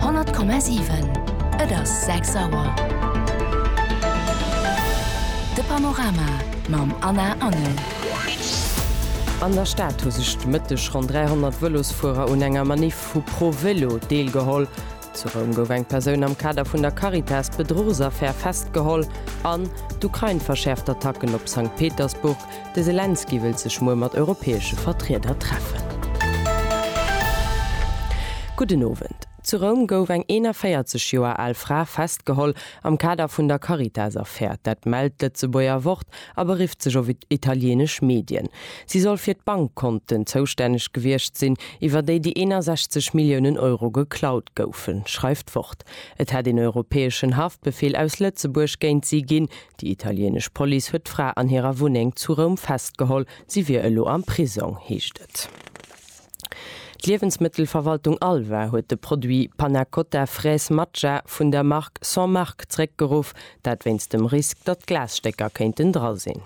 100,7. Et ass 6 Auer. De Panorama mam Anna Engel. An der Stad hu sech de Mëtteg ronn 300 Vëlosfuerer un enger Maniff vu ProVelo deelgeholl. Zu Roum gouf eng Persoun am Kader vun der Caritas-Bedruchsaffär festgeholl an d'Ukrain verschäerft d'Attacken op Sankt Petersburg. De Selenskyj wëllt sech muer mat europäesche Vertrieder treffen. Gudden Owend. Zu Roum gouf eng 41 Joer al Fra festgeholl am Kader vun der Caritas-Affär. Dat mellt d'Lëtzebuerger Wort a berifft sech op italieenesch Medien. Si soll fir d'Bankkonten zoustänneg gewiescht sinn, iwwer déi déi 61 Milliounen Euro geklaut goufen, schreift d'Wort. Et hätt een europäeschen Haftbefeel aus Lëtzebuerg géint si ginn, Déi italieenesch Police huet d'Fra an hirer Wunneng zu Roum festgeholl. Si wier elo am Prisong, heescht et. D'Liewensmëttelverwaltung Alva huet de Produit Panna Cotta Fraise Matcha vun der Mark Sans Marque zeréckgeruff. Dat wéinst dem Risk, datt Glasstécker kéinten dra sinn.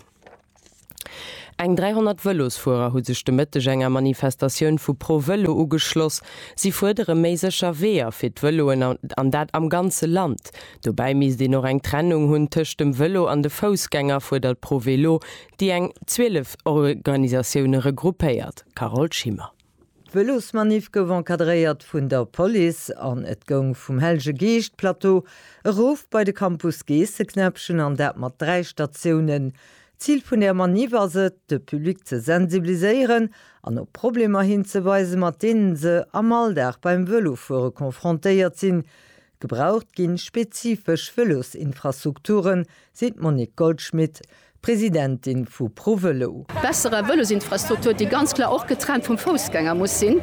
Eng 300 Vëlosfuerer hu sech de Mëtteg enger Manifestatioun vu Pro Vëlo ugeschloss. Si fuerdere méi sécher Weeër fir d'Vëloen an dat am ganze Land. Dobäi misst een och eng Trennung hunn tëscht dem Vëlo an de Foussgänger, fuerdert Pro Vélo, déi eng 12 Organisatioune regroupéiert. Carole Schimmer. D'Vëlosmaniff gouf encadréiert vun der Police an et goung vum Hellege Geescht Plateau erof bei de Campus Geesseknäppchen an dat mat 3 Statiounen. D'Zil vun der Maniff ass et, de Public ze sensibiliséieren an op Problemer hinzeweisen, mat deenen se am Alldag beim Vëlofuere confrontéiert sinn, Gebraucht ginn, spezifesch Vëlosinfrastrukturen, seet d'Monique Goldschmit, Presidentin vu ProVelo. Besserer Vëlosinfrastruktur, déi ganz klar och getrennt vum Foussgänger muss sinn,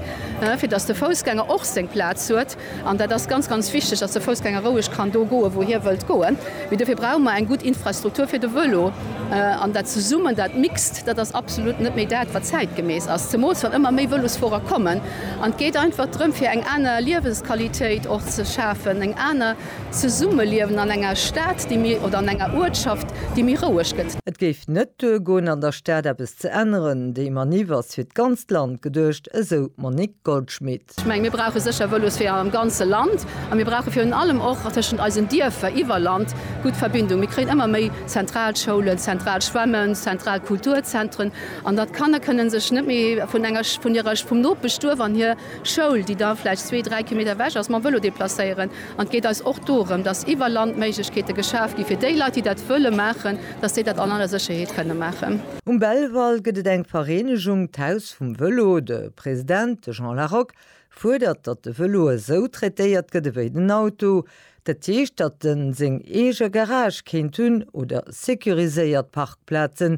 fir datt de Foussgänger och seng Plaz huet. An dat ass ganz, ganz wichteg, datt de Foussgänger roueg kann do goen, wou hie wëllt goen. Mee dofir brauche mer eng gutt Infrastruktur fir de Vëlo. An dat Zesummen, dat Mixt, dat ass absolut net méi dat, wat zäitgemäss ass, zemools wann ëmmer méi Vëlosfuerer kommen. An et geet einfach drëm, fir eng aner Liewensqualitéit och ze schafen, eng aner Zesummeliewen an enger Stad, déi méi, oder an enger Uertschaft, déi méi roueg gëtt. Et géif net duergoen, an der Stad eppes ze änneren. Déi Maniff ass fir d'ganzt Land geduecht, esou d'Monique Goldschmit. Ech mengen, mir brauche sécher Vëlosweeër am ganze Land. A mir brauche virun allem och tëschent eisen Dierfer iwwer Land gutt Verbindungen. Mir kréien ëmmer méi zentral Schoulen, zentral Schwämmen, zentral Kulturzentren. An datt d'Kanner kënnen sech net méi vun enger, vun hirer, vum Nopeschduerf an hir Schoul, déi da vläicht zwee, dräi Kilometer ewech ass, mam Vëlo deplacéieren. An et geet eis och dorëm, datt iwwer Land Méiglechkeete geschaf gi fir déi Leit, déi dat wëlle maachen, datt déi dat an aller Sécherheet kënne maachen. Um Belval gëtt et eng Vereenegung, d'Haus vum Vëlo. De President, de Jean Larock, fuerdert, datt de Vëlo esou traitéiert gëtt ewéi den Auto. Dat heescht, datt en seng eege Garage kéint hunn oder securiséiert Parkplazen,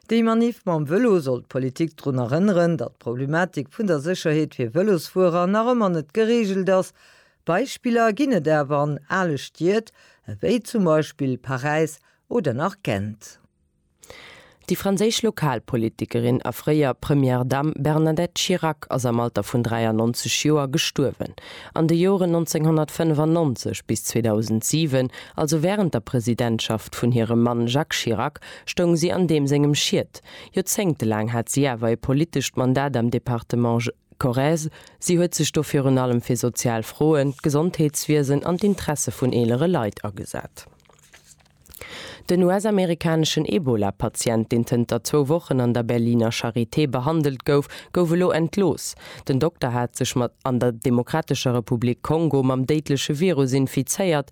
Déi Maniff mam Vëlo soll d'Politik drun erënneren, datt d'Problematik vun der Sécherheet fir Vëlosfuerer nach ëmmer net gereegelt ass. Beispiller ginn et awer an ale Stied, ewéi zum Beispill Paräis oder nach Gent. Déi franséisch Lokalpolitikerin a fréier Première Dame Bernadette Chirac ass am Alter vun 93 Joer gestuerwen. An de Joren 1995 bis 2007, also wärend der Presidentschaft vun hirem Mann Jacques Chirac, stoung si an deem sengem Schiet. Joerzéngte laang hat si awer e politescht Mandat am Departement Corrèze. Si huet sech do virun allem fir sozial Froen, d'Gesondheetswiesen an d'Interesse vun eelere Leit agesat. Den US-amerikaneschen Ebola-Patient, deen zënter zwou Wochen an der Berliner Charité behandelt gouf, gouf elo entlooss. Den Dokter hat sech mat an der Demokratescher Republik Kongo mam déidleche Virus infizéiert.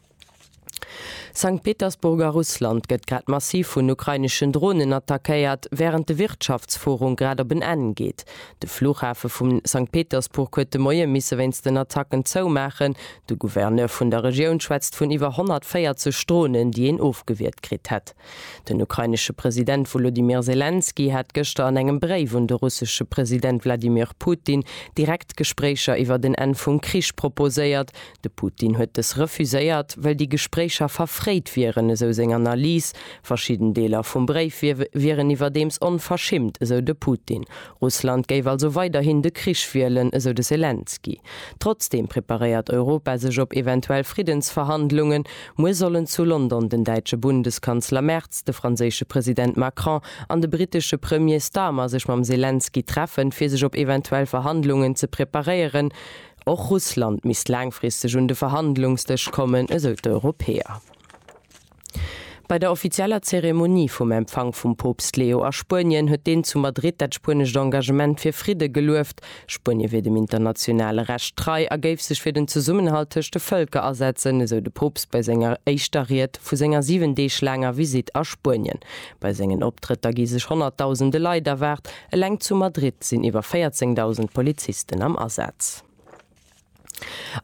Sankt Petersburg a Russland gëtt grad massiv vun ukraineschen Dronen attackéiert, wärend de Wirtschaftsforung grad op en Enn geet. De Flughafe vu Sankt Petersburg huet de Moie misse wéinst den Attacken zoumaachen. De Gouverneur vun der Regioun schwätzt vun iwwer 140 Dronen, déi een ofgewiert kritt hätt. Den ukrainesche President Wolodymyr Selenskyj hat gëschter an engem Bréif un de russesche President Wladimir Putin direkt Gespréicher iwwer en Enn vum Krich proposéiert, De Putin huet dës refuséiert, well déi Gespréicher verfréit wieren, esou seng Analys. Verschidden Deeler vum Bréif wieren iwwerdeems onverschimmt, esou de Putin. Russland géif also weiderhin de Krich wielen, esou de Selenskyj. Trotzdeem preparéiert Europa sech op eventuell Friddensverhandlungen. Muer sollen zu London den däitsche Bundeskanzler Merz, de franséische President Macron an de brittesche Premier Starmer sech mam Selenskyj treffen, fir sech op eventuell Verhandlungen ze preparéieren. Och Russland misst laangfristeg un de Verhandlungsdësch kommen, esou d'Europäer. Bei der offizieller Zeremonie vum Empfank vum Poopst Leo a Spuenien huet deen zu Madrid dat spuenescht Engagement fir Fridde gelueft. Spuenie wier dem internationale Recht trei a géif sech fir den Zesummenhalt tëscht de Vëlker asetzen, esou de Poopst bei senger éischter Ried vu senger 7 Deeg laanger Visitt a Spuenien. Bei sengen Optrëtter gi sech Honnertdausende Leit erwaart. Eleng zu Madrid sinn iwwer 14.000 Polizisten am Asaz.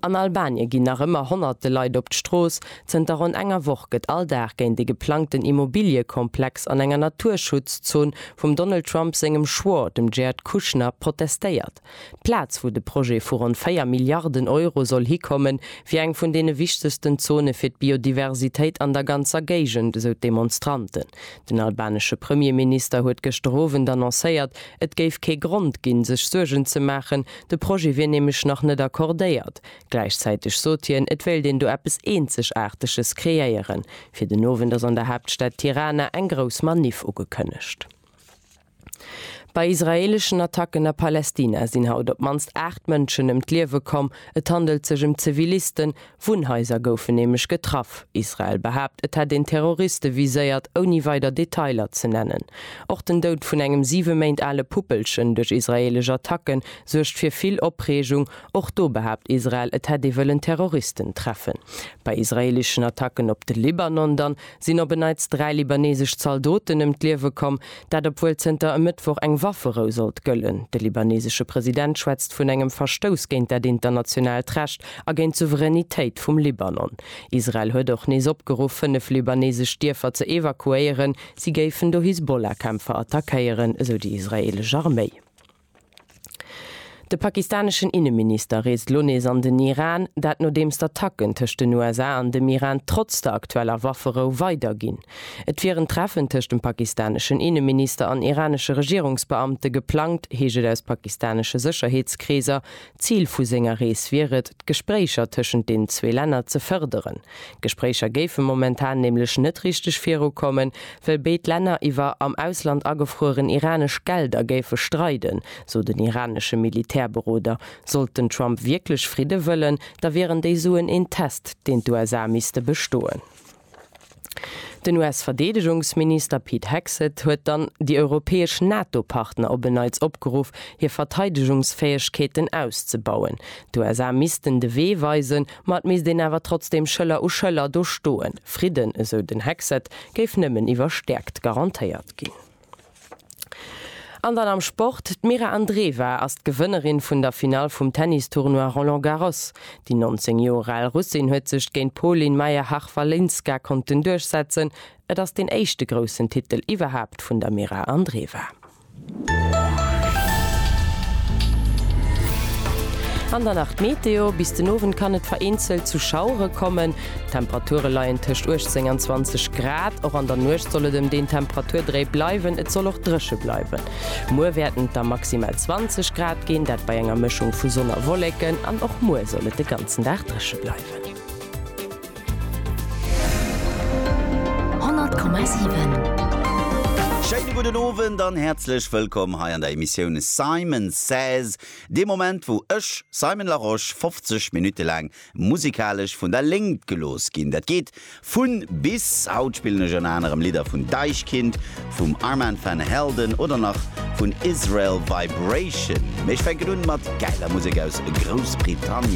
An Albanie ginn nach ëmmer honnerte Leit op d'Strooss. Zënter ronn enger Woch gëtt all Dag géint dee geplangten Immobiliekomplex an enger Naturschutzzon vum Donald Trump sengem Schwor, dem Jared Kushner, protestéiert. D'Plaz, wou de Projet vu ronn 4 Milliarden Euro soll hikommen, wier eng vun deene wichtegsten Zone fir d'Biodiversitéit an der ganzer Géigend, esou d'Demonstranten. Den albanesche Premierminister huet gëschter Owend annoncéiert, et géif kee Grond ginn, sech Suergen ze maachen, de Projet wier nämlech nach net accordéiert. Gläichzäiteg sot hien, et wéilt een do eppes Eenzegaarteges kreéieren. Fir den Owend ass an der Haaptstad Tirana eng grouss Maniff ugekënnegt. Bei israeeleschen Attacken a Palästina sinn haut op d'mannst 8 Mënschen ëm d'Liewe komm. Et handelt sech ëm Zivilisten, Wunnhaiser goufen nämlech getraff. Israel behaapt, et hätt een Terroriste viséiert, ouni weider Detailer ze nennen. Och den Doud vun engem siwe Méint ale Puppelchen duerch israeelesch Attacke suergt fir vill Opreegung. Och do behaapt Israel, et hätt ee wëllen Terroristen treffen. Bei israeeleschen Attacken op de Libanon dann sinn op en Neits dräi libanesesch Zaldoten ëm d'Liewe komm, dat obwuel zënter e Mëttwoch eng Wafferou sollt gëllen. De libaneesesche President schwätzt vun engem Verstouss géint dat internationaalt Recht a géint d'Souveränitéit vum Libanon. Israel huet och nees opgeruff, fënnef libanesesch Dierfer ze evakuéieren, si géifen do Hisbollah-Kämpfer attackéieren, esou déi israeelesch Arméi. De pakistaneschen Inneminister reest lo nees an den Iran, dat nodeems d'Attacken tëscht den USA an dem Iran trotz der aktueller Wafferou weiderginn. Et wier en Treffen tëscht dem pakistaneschen Inneminister an iranesche Regierungsbeamte geplangt, heescht et aus pakistanesche Sécherheetskreeser, D'Zil vu senger Rees wier et, d'Gespréicher tëschent den zwee Länner ze fërderen. D'Gespréicher géife momentan nämlech net richteg virukommen, well béid Länner iwwer am Ausland agefrueren iranesch Gelder géife streiden, sou den iranesche Militärberoder. Sollt den Trump wierklech Fridde wëllen, da wieren déi Suen een Test, deen d'USA misste bestoen. Den US-Verdeedegungsminister Pete Hegseth huet dann déi europäesch NATO-Partner op en Neits opgeruff, hir Verteidegungsfäegkeeten auszebauen. D'USA missten de Wee weisen, ma et misst een awer trotzdeem Schëller u Schëller do stoen. Fridden, esou den Hegseth, géif nëmmen iwwer Stäerkt garantéiert ginn. An dann am Sport, D'Mira Andreeva ass d'Gewënnerin vun der Finall vum Tennis-Tournoi Roland Garros. Déi 19 Joer al Russin huet sech géint d'Polin Majerchak-Walinska konnten duerchsetzen. Et ass deen éischte groussen Titel iwwerhaapt vun der Mira Andreeva. An dann nach d'Meteo, Bis den Owend kann et vereenzelt zu Schauere kommen. D'Temperature leien tëscht 18 an 20 Grad. Och an der Nuecht soll et ëm deen Temperaturdréi bleiwen. Et soll och dréche bleiwen. Muer wäerten et da maximal 20 Grad ginn, dat bei enger Mëschung vu Sonn a Wolleken. An och muer soll et de ganzen Dag dréche bleiwen. 100,7. Schéine gudden Owend an häerzlech wëllkomm hei an der Emissioun Simon Says, dee Moment wou ech, Simon Larosche, 50 Minutte laang musikalesch vun der Léngt gelooss ginn. Dat geet vun bis. Haut spillen ech ënner anerem Lidder vun Deichkind, vum Armand Van Helden oder nach vun Israel Vibration. Mee ech fänken un mat gäiler Musek aus Groussbritannien.